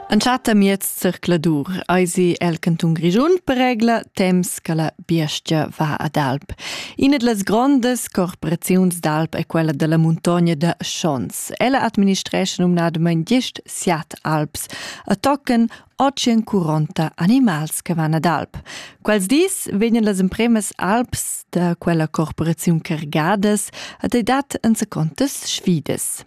Entschatta miez zircladur eisi el cantun Grischun per regla temps che la biestga va ad alp. Ina dlas grondas corporaziuns d'alp è quella della muntogna da Schons. Ella administresce numnadamain gist siat alps a tocken ocien curonta animals che van ad alp. Quels dis vegnan las empremas alps da quella corporaziun cargadas ad edat enzacontas sfidas.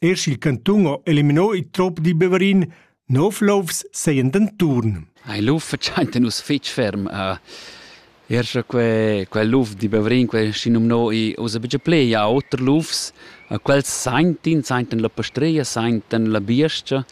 Er sch'il cantun ha eliminò il trup di Beverin, nov lofs seien denturn. Ei luf fatschainta nus fitg ferm. Uh, er sche quel, quel luf di Beverin, quel schinumnò i usa bigia plei a oter lufs, uh, quels saintin, sainten la pastreia, sainten la biescia.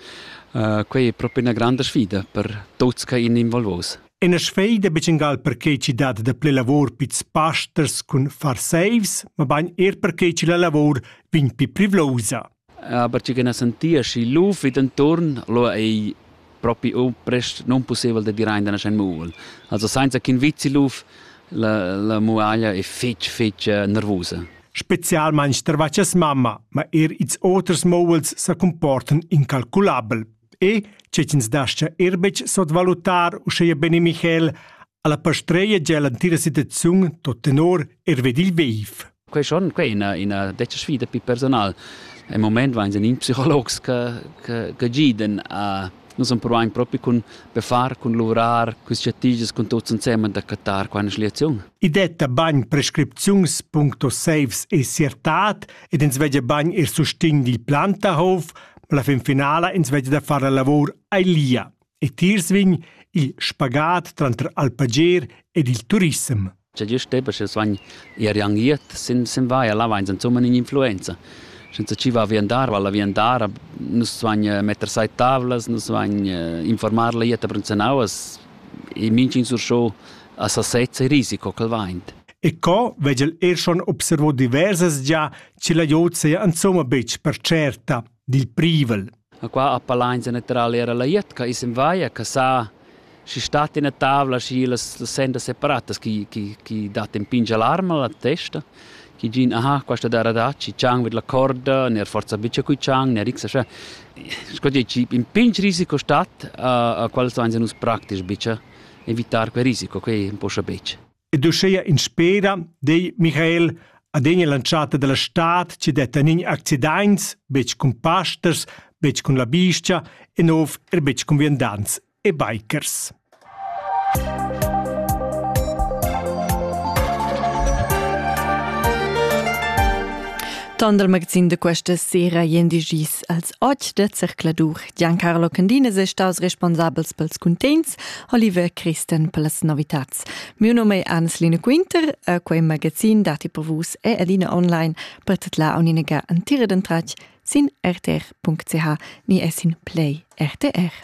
Uh, quei è proprio una grande sfida per tuts che in involvos. E na sveida betg perquei ch'i dat da ple lavor pits pasters cun far seivs, mabain er perquei che la lavor vegn pi privlousa. Aber tgi che na sentia schi luf vid enturn, allora ei propi o prest non possibel de dir ein da nascen muvel. Also senza ch'in vizi luf la, la muaglia è fitch, fitch eh, nervosa. Spezialmain stervachas mamma, ma er ils oters mouels sa comportan incalculabel. E che ch'ins dascha er betg sotvalutar uscheia bene Michael alla pastreia gia l'antira situaziun tot tenor er ved il veiv. Quei schon quei ina ina detta sfida pi personal. Im Moment waren in Psychologs che che che giden a Nus am provain propi cun befar, cun luvrar, cun strategias, cun tuts insem da cattar qua eine Sliation. I detta bagn prescripziuns.saves e siertat ed ins vegia bagn er sustign dil Plantahof, La fin finala ins vegg da far la lavor ei lia e tiers vegn il spagat tranter alpager ed il turissem. C'è giusto tempo che sono irrangiert, sin sin vai alla vains insomma in influenza. Senza ci va viandar, valla viandar, nus sono eh, metter sai tavlas, nus sono eh, informar la ietta prensanauas e minching sur show a sasezza e risiko che vaint. E co vegel er schon observo diverses già che la jod seia insomma betg per certa dil privel. A qua a palainza natural era la jetca is in vaia che sa si stat ina tavla si las, las sendas separatas chi, chi, chi dat in pingia l'arma la testa chi gin aha questa dara da ci chang vid la corda ner forza bice cui chang ner x scha scogi ci in pinch risico stat a, a qual so nus praktisch bice evitar quel risico quei un po scha bice ed uschea in spera dei Michael adegna lanciata dalla stad ci detta nin accidaints, betg cun pasters, betg cun la biscia e nov er betg cun viandants e bikers. Tant dal magazin de questa sera ien digis als Oggi de Zercladur. Giancarlo Candines è staus responsabels pels cuntents, Oliver Christen pels novitats. Mio nome è Anneslina Quinter, e quei magazin dati per vus e adina online per tutla uniniga antira den tracc sin rtr.ch ni es in play RTR.